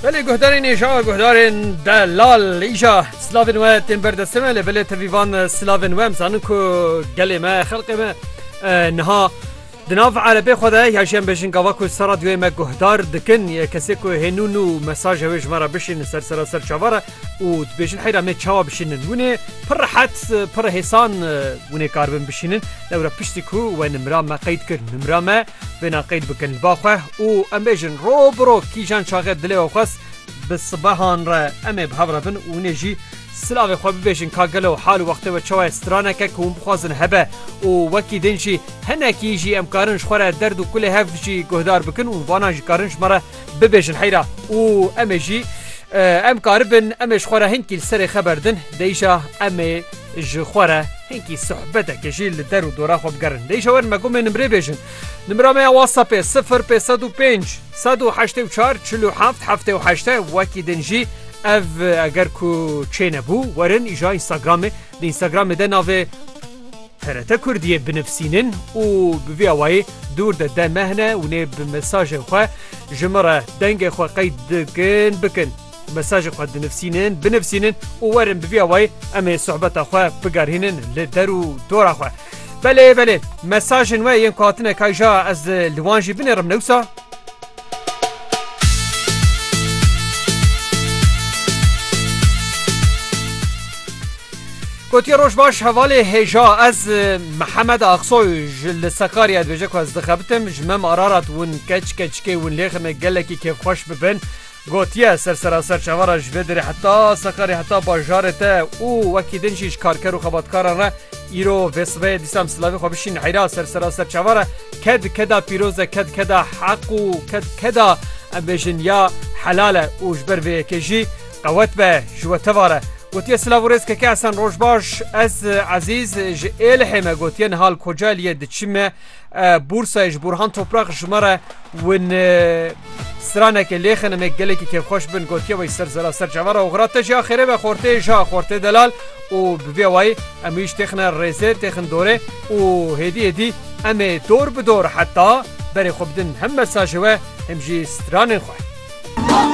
Belê guhdarên êja guhdarên delal îja silavên we tên berdestê me lê belê tevîvan silavên we em zanin ku gelê me xelqê me niha di nav erebê xwe de ya jî em bêjin gava ku ser radyoyê me guhdar dikin yê kesê ku hênûn û mesaja wê ji me re bişînin ser sera ser çavar e û dibêjin heyra me çawa bişînin hûn ê pir rehet pir hêsan hûn ê kar bin bişînin lewre piştî ku we nimra me qeyd kir nimra me Bêna qeyd bikin ba xwe û em bêjin ro bi ro kîjan çaxê dilê we xwest bi sibehan re em ê bi hev re bin û hûn ê jî silavê xwe bibêjin ka gelo hal û wextê we çawa ye straneke ku hûn bixwazin hebe û wekî din jî hinekî jî em karin ji xwe re derd û kulê hev jî guhdar bikin û vana jî karin ji me re bibêjin heyra û em ê jî em karibin em ê ji xwe re hinkî li serê xeber din deyşa em ê ji xwe re hinkî sohbeteke jî li der û dora xwe bigerin deyşa werin me gomê nimrê bêjin nimra me ya whatsappê 0 pê 105 184 47 heftê û heşte wekî din jî ev eger ku çênebû werin îja Instagramê di Instagramê de navê TRT Kurdiyê binivsînin û bi vî awayî dûr de de mehne û nê bi mesajên xwe ji min re dengê xwe qeyd dikin bikin. Mesajê xwe dinivsînin, binivsînin û werin bi vî awayî em ê sohbeta xwe bigerhînin li der û dora xwe. Belê belê mesajên we yên ku hatine kayja ez li wan jî binêrim newsa. Gotiye roj baş hevalê hêja ez Mihemed Axsoy ji li Sakaryayê dibêje ku ez dixebitim ji me mararat win keç keçikê win lêxime gelekî kêfxweş bibin. Gotiye, sersera ser çavara ji vê derê heta Sakarê heta bajarê te û wekî din jî ji karker û xebatkaran re îro vê sibehê dîsam silavê xwe bişîn heyra sersera ser çavara ked keda pîroz e ked keda heq û ked keda em bêjin ya helal e û ji ber vê yekê jî qewet be ji we tevar e. Gotiye silav û rêz keke Esen roj baş ez Ezîz ji Êlihê me gotiye nihal Kocaeliyê diçime Bursayê ji Burhan Toprak ji me re win stranekê lêxin em gelekî kêfxweş bin gotiye wê ser zera ser cevera oxira te jî axêrê ve xortê ji xortê delal û bi vê wayî em wî ji têxine rêzê têxin dorê û hêdî hêdî em ê dor bi dor heta berê xwe bidin hem mesajê we hem jî stranên xwe.